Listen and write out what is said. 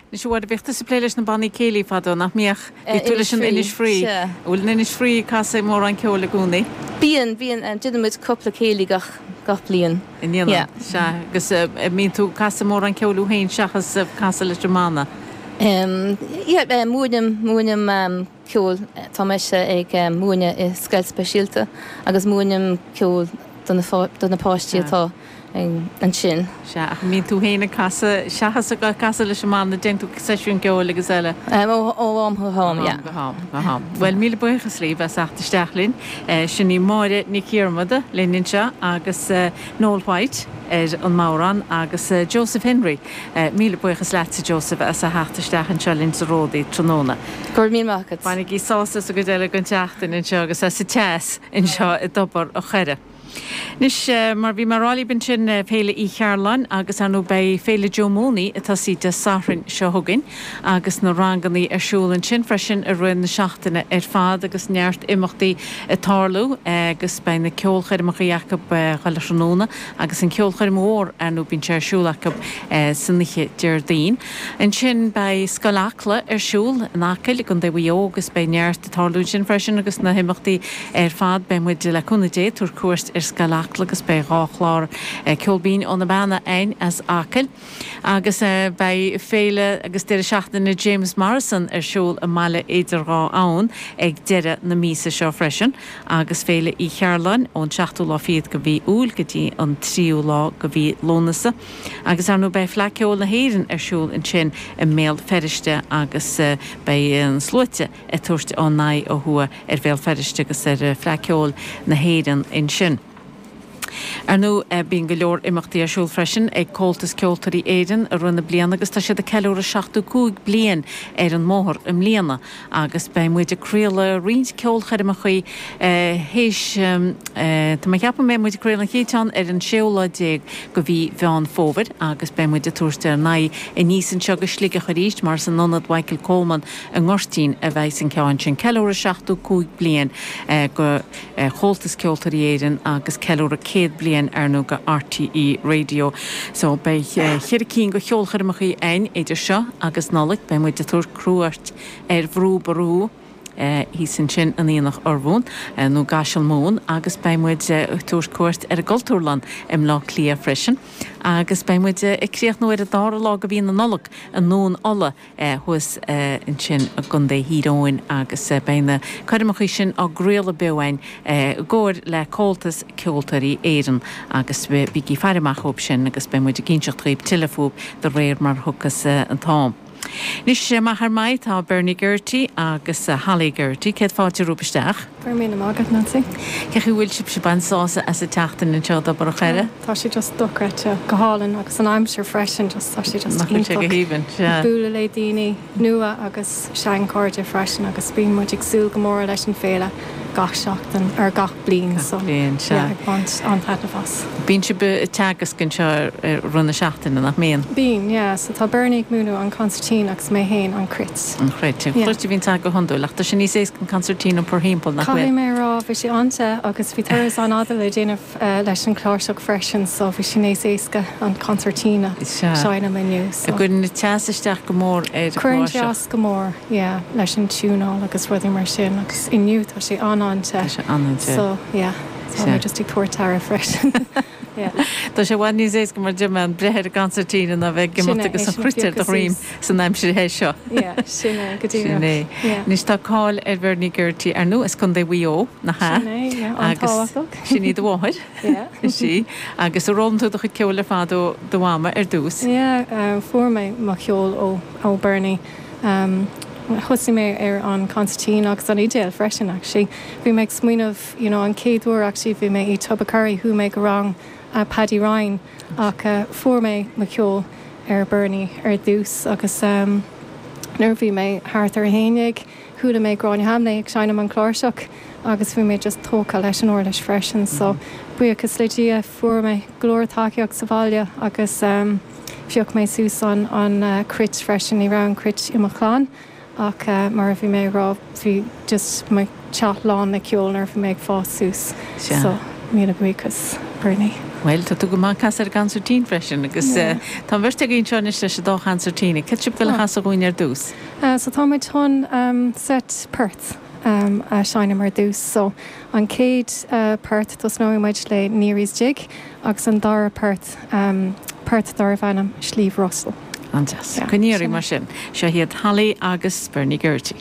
Anois ar ndóigh bhíodh tusa ag plé leis na bannaí céilí fadó, nach mbíodh? Bhíodh tú leis an Innisfree. An bhfuil an Innisfree ag casadh mórán ceoil i gcónaí? Bíonn, bíonn. Déanann muid cúpla céilí gach, gach bliain. An ndéanann? Yeah. Sea. Agus a' mbíonn tú ag casadh mórán ceoil thú féin seachas casadh leis an mbanna? Yeah, múinim, múinim. ceoil. Tá mise ag múineadh i scoil speisialta agus múinim ceol do na páistí atá ansin. Sea, ach an mbíonn tú féin ag casadh seachas ag casadh leis an mbanna? Déanann tú seisiúin ceoil agus eile? Ó ham go ham, yeah. Ó ham go ham. Bhuel, míle buíochas libh as theacht isteach linn. Sin í Máire Nic Dhiarmada linn anseo agus Noel White ar an mbodhrán agus Joseph Henry. Míle buíochas leatsa, Joseph, as a theacht isteach anseo linn sa Ródaí tráthnóna. Go raibh míle maith agat. Bainigí sásamh as an gcuid eile den tseachtain anseo agus as an teas anseo i dTobar an Choire. Anois, mar bhí mé a rá libh ansin, Féile Uí Chearláin agus, ar ndóigh, beidh Féile Joe Mooney, ag tosaí Dé Sathairn seo chugainn, agus na ranganna ar siúl ansin freisin i rith na seachtaine ar fad agus neart imeachtaí ag tarlú agus beidh na ceolchoirmeacha acu chuile thráthnóna. agus an cheolchoirm mhór ar ndóigh bíonn sé ar siúl acu san oíche Déardaoin. Ansin beidh Scoil Acla ar siúl in Acaill i gContae Mhaigh Eo agus beidh neart ag tarlú ansin freisin agus na himeachtaí ar fad beidh muid, le cúnamh Dé, ag tabhairt cuairt ar Scoil Acla agus beidh dhá chlár ceol binn ó na Beanna againn as Acaill. Agus beidh Féile agus Deireadh Seachtaine James Morrison ar siúl i mBaile Idir Dhá Abhann ag deireadh na míosa seo freisin, agus Féile Uí Chearláin ón seachtú lá fichead de mhí Iúil go dtí an tríú lá de mhí Lúnasa. Agus ar ndóigh beidh Fleadh Ceoil na hÉireann ar siúl ansin i mBéal Feirste agus beidh na sluaite ag tabhairt a n-aghaidh ó thuaidh ar Bhéal Feirste agus ar Fleadh Ceoil na hÉireann ansin. Ar ndóigh, bíonn go leor imeachtaí ar siúl freisin ag Comhaltas Ceoltóirí Éireann i rith na bliana agus tá siad ag ceiliúradh 75 bliain ar an mbóthar i mbliana agus beidh muid ag craoladh roinnt ceolchoirmeachaí théis Tá mé ag ceapadh mbeidh muid ag craoladh an chéad cheann ar an séú lá déag de mhí Mheán Fómhair agus beidh muid ag tabhairt ár n-aghaidh aníos anseo go Sligeach arís mar is in Ionad Mhichael Coleman i nGoirtín a bheidhs an ceann sin. Ceiliúradh 75 bliain de. Chomhaltas Ceoltóirí Éireann agus ceiliúradh céad bliain ar ndóigh de RTÉ Raidió. So beidh cheithre cinn de cheolchoirmeacha againn idir seo agus Nollaig. Beidh muid ag tabhairt cuairt ar Bhrú Ború thíos ansin in Aonach Urmhumhan nó i gCaiseal Mumhan agus beidh muid ag tabhairt cuairt ar an gCultúrlann i mBleá Cliath freisin agus beidh muid ag críochnú ar an dara lá de mhí na Nollag i nDún Uladh thuas ansin i gContae Thír Eoghain agus beidh na coirmeacha sin á gcraoladh beo ann i gcomhar le Comhaltas Ceoltóirí Éireann agus bígí ag faire amach dóibh sin agus beidh muid ag inseacht dhaoibh tuilleadh faoi de réir mar a thiocfas an t-am. Anois amach ar m'aghaidh tá Bernie Geraghty agus Holly Geraghty. Céad fáilte romhaibh isteach. Go raibh míle maith agat, Nancy. Cén chaoi a bhfuil sibhse ag baint sásamh as a theacht in anseo go Tobar an Choire? Tá sé just dochreidte, go hálainn agus an aimsir freisin just tá sé just iontach ag bualadh le daoine nua agus seanchairde freisin agus bíonn muid ag súil go mór leis an féile gach seachtain nó gach bliain so yeah ag baint an-taitneamh as. Bíonn sibh ag teagasc anseo ar nós na seachtaine nach mbíonn? Bíonn yeah so tá Bernie ag múineadh an consairtín agus mé féin an cruit. An chruit. Cruit a bhíonn agat go hiondúil, ach tá sé níos éasca an concertina a iompar timpeall, nach bhfuil? Caithfidh mé a rá, bhí sé an-te agus bhí turas an-fhada le déanamh leis an chláirseach freisin so bhí sé níos éasca an concertina a sheinm inniu so. Sea. An gcuireann teas isteach go mór ar an chláirseach? Cuireann teas go mór, yeah, leis an tiúnáil agus rudaí mar sin agus inniu tá sé an-an-te Tá sé an-te. so yeah, so Sea. bhí mé just ag tabhairt aire freisin. Tá sé i bhfad níos éasca mar a deir tú breith ar an gconsairtín ná a bheith ag imeacht agus an chruit ar do dhroim san aimsir the seo. Sin é. Anois tá cáil ar Bhernie Geraghty ar ndóigh as Contae Mhaigh Eo, nach ea? Sin é, yeah, an-tábhachtach. Agus sin í do mháthair. Yeah. Is í. Agus ar fhoghlaim tú do chuid ceoil ar fad ó do mhama ar dtús? Yeah, fuair mé mo cheol ó Bernie. Thosaigh mé ar an gconsairtín agus an fhidil freisin actually. Bhí mé ag smaoineamh. you know an chéad uair actually bhí mé i Tubbercurry chuaigh mé go rang Paddy Ryan ach fuair mé mo cheol ar Bernie ar dtús agus em nuair a bhí mé thart ar a haon déag chuala mé Gráinne Hambly ag seinm an cláirseach agus bhí mé just tógtha leis an uirlis freisin so buíochas le Dia fuair mé go leor tacaíocht sa bhaile agus em phioc mé suas an an cruit freisin ní raibh an cruit i mo chlann Ach mar a bhí mé ag rá, bhí just mo theach lán le ceol nuair a bhí mé ag fás suas. Sea. So, míle buíochas, Bernie. Bhuel, tá tú go maith ag casadh ar an gconsairtín freisin agus tá an bheirt agaibh anseo anois leis an dá chonsairtín. Céard atá sibh ag goil a chasadh dhúinn ar dtús? So, tá muid chun seit port a seinm ar dtús. So, an chéad port, tosnóidh muid le Neary's Jig agus an dara port, port darbh ainm Sliabh Russell. An-deas. Go n-éirí mar sin. Seo iad Holly agus Bernie Geraghty.